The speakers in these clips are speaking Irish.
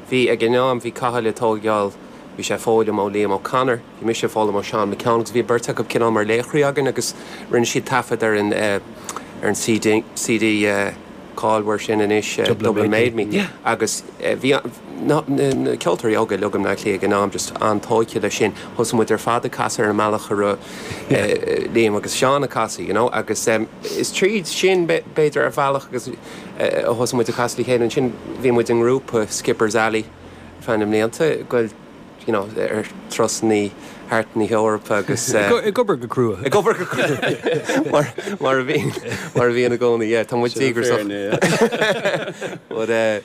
Bhí, ag an am, bhí Cathal ag tóigeáil, bhí sé ag foghlaim ó Liam O'Connor, bhí mise ag foghlaim ó Sheán McKeon agus bhí an beirt acu cineál mar laochraí againn agus rinne siad taifead ar an, eh, ar an C.D, C.D, eh, cáilmhar sin anois, eh, Dublin Dublin Made Made Me, Me, yeah. agus, eh, bhí an, na, na, na ceoltóirí óga uilig i mBleá Cliath ag an am just an-tóigthe leis sin, thosaigh muid ar fad ag casadh ar an mbealach a raibh, eh, Yeah. eh, Liam agus Seán ag casadh, you know, agus, em, is tríd sin, b'fhé, b'fhéidir, ar bhealach agus, Ó thosaigh muid ag casadh le chéile ansin, bhí muid i ngrúpa, Skipper's Alley, ar feadh na mblianta, ag goil, you know, ar thurasannaí thart na hEorpa agus. ag obair go crua. ag obair go crua, mar a bhíonn i gcónaí, yeah, tá muid díograsach. But eh.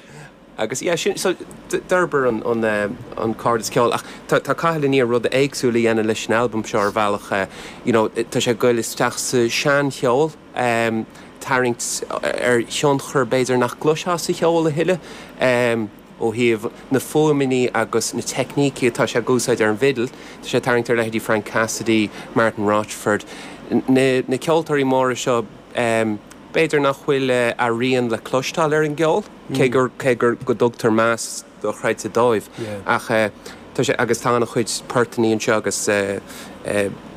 Agus yeah, sin, so d'fhorbair an, an cairdeas ceol ach tá, tá Cathal i ndiaidh rud éagsúil a dhéanamh leis an albam seo ar bhealach eh you know tá sé ag goil isteach sa seancheol, em tarraingt ar thionchair b'fhéidir nach gcloisfeá sa cheol a thuilleadh em ó thaobh na fuaimní agus na teicnící atá sé ag úsáid ar an bhfidil, tá sé ag tarraingt ar leithéidí Frank Cassidy, Martin Rochford, na, na ceoltóirí móra seo em. B'fhéidir nach bhfuil a rian le cloisteáil ar an gceol, cé gur cé gur go dtugtar meas dochreidte dóibh, ach tá sé agus tá an-chuid portannaí anseo agus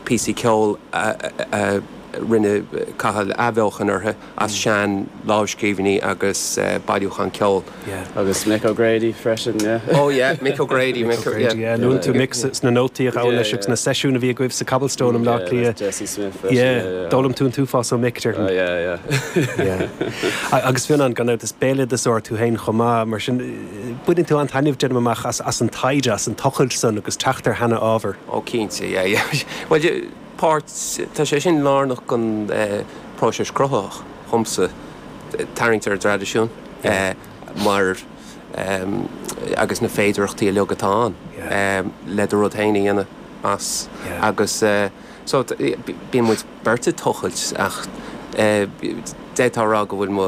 píosaí ceol a rinne Cathal athbheochan orthu as seanlámhscríbhinní agus bailiúchán ceol. Yeah. Agus Mick O'Grady freisin, yeah. Oh yeah, Mick O'Grady, Mick O'Grady, yeah. yeah. Luann tú Mick sna nótaí a ghabhann leis agus na seisiúin a bhí agaibh sa Cobblestone i mBleá Cliath. Jesse Smith freisin, yeah, yeah, yeah. D'fhoghlaim tú an t-uafás ó Mick, déarfainn. Oh yeah, yeah. yeah. Agus Fionnán, gan dabht is béaloideasóir tú féin chomh maith, mar sin baineann tú an-taitneamh déanaim amach as an taighde, as an tochailt san agus teacht ar sheana-ábhar. Oh cinnte, yeah, yeah. Bhuel, páirt, tá sé sin lárnach don phróiseas cruthaitheach dhomsa, tarraingt ar an dtraidisiún mar agus na féidearthachtaí uilig atá ann le do rud féin a dhéanamh as agus so bíonn muid beirt ag tochailt ach d'fhéadfá a rá go bhfuil mo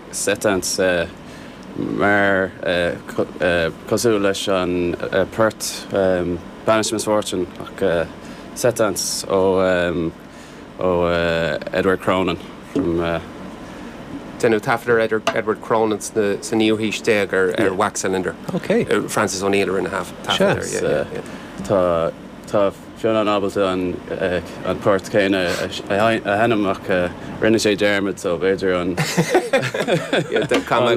Setting, tá sé mar, cosúil leis an port Banish Misfortune ach setting ó Edward Cronin from. Deineadh taifead ar Edward Cronin sa naoú haois déag ar wax cylinder. Francis O'Neill a rinne taifead air. Tá Fionnán ábalta an port céanna a sheinm ach rinne sé dearmad so b'fhéidir an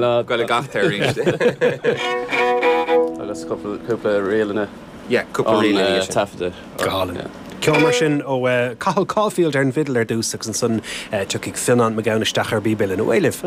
lá go gcaithfear arís agus cúpla ríleanna ón taifeadadh. Ceol mar sin ó Chathal Caulfield ar an bhfidil ar dtús agus ansan tiocfaidh Fionnán Mac Gabhann isteach ar an bpíb uilleann. Ar aghaidh libh.